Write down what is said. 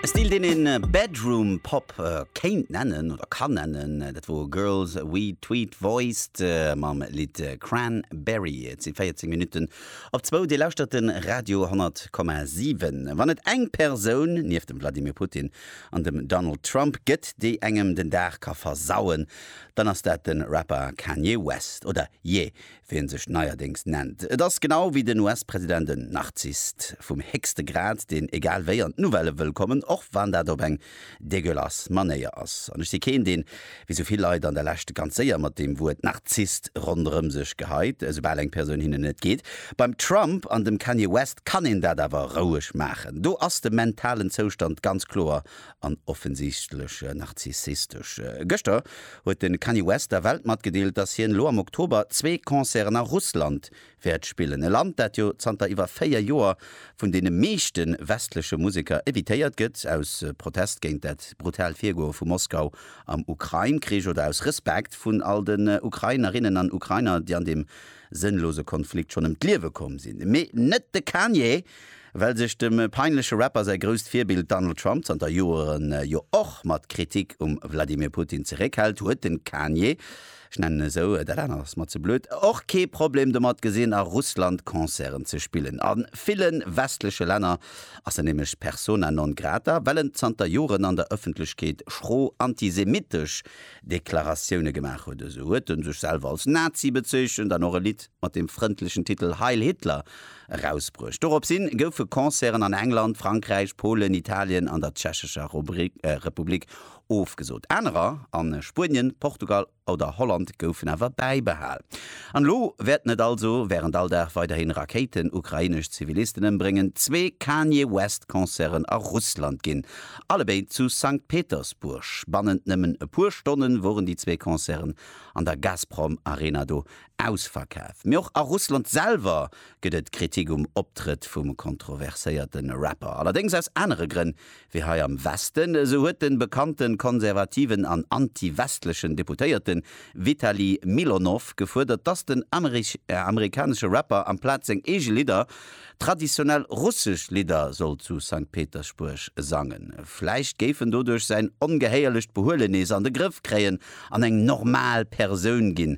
E Stil, deen een Bedroom Pop kéint nennen, oder kann nennen. Dat wor Girls We Tweet Voiced mam Lidd Cranberry. Et si 14 Minutten op zwou. Dir lauschtert de Radio 10,7. Wann et eng Persoun, nieft dem Vladimir Putin an dem Donald Trump, gëtt, déi engem den Dag ka versauen, dann ass dat de Rapper Kanye West. Oder Ye, wéi en sech neierdéngs nennt. Et ass genau wéi den US-President en Narzisst vum héchste Grad, deen egal wéi an d'Nouvelle wëll kommen, och wann dat op eng deguelass Manéier ass. An ech si keen, deen, wéi sou vill Leit an der Lescht, ganz séier mat deem Wuert Narzisst ronderëm sech geheit, esoubal eng Persoun hinnen net geet. Beim Trump an dem Kanye West kann een dat awer roueg maachen. Do ass de mentalen Zoustand ganz kloer an offensichtleche narzissistesche. Gëschter huet de Kanye West der Welt matgedeelt, dass hien elo am Oktober zwee Concerten a Russland wäert spillen. E Land, dat jo zanter iwwer véier Joer vun deene meeschte westleche Museker evitéiert gëtt, aus Protest géint dat brutalt Virgoe vu Moskau am Ukrain-Krich oder aus Respekt vun all den Ukrainerinnen an Ukrainer, déi an deem sënnlose Konflikt schonn ëm d'Liewe komm sinn. Mee net de Kanye! Well sech dem peinleche Rapper säi grousst Virbild Donald Trump zanter Joeren jo och mat Kritik um Vladimir Putin zeréckhält, huet de Kanye, ech nennen en esou, dat anert ass mer ze blöd, och kee Problem domat gesinn a Russland Concerten ze spillen. A ville westleche Länner ass en nämlech persona non grata, well en zanter Joeren an der Ëffentlechkeet schro antisemitesch Deklaratioune gemaach huet. Esou huet en sech selwer als Nazi bezeechent an och e Lidd mat dem frëndlechen Titel Heil Hitler Erausbruecht. Doropshin goufe Concerten an England, Frankräich, Polen, Italien an der Tschechescher Republik ofgesot. Anerer, a Spuenien, Portugal oder Holland, goufen awer bäibehal. An elo wäerten et also während all Dag weiderhin Rakéiten ukrainesch Zivilisten ëmbréngen, zwee Kanye West Concerten a Russland ginn, allebéid zu Sankt Petersburg. Bannent nëmmen e puer Stonnen woren déi zwee Concerten an der Gazprom Arena do. Ausverkaf. Mee och a Russland selwer gëtt et Kritik um Optrëtt vum kontroverséierte Rapper. Allerdéngs aus anere Grënn wéi hei am Westen. Esou huet de bekannte konservativen an anti-westlechen Deputéierte Vitali Milonow gefuerdert, datt den amerikanesche Rapper amplaz seng eege Lidder traditionell russesch Lidder soll zu Sankt Petersbuerg sangen. Vläicht géif en doduerch säin ongehéierlecht Behuelenees an de Grëff kréien an eng normal Persoun ginn.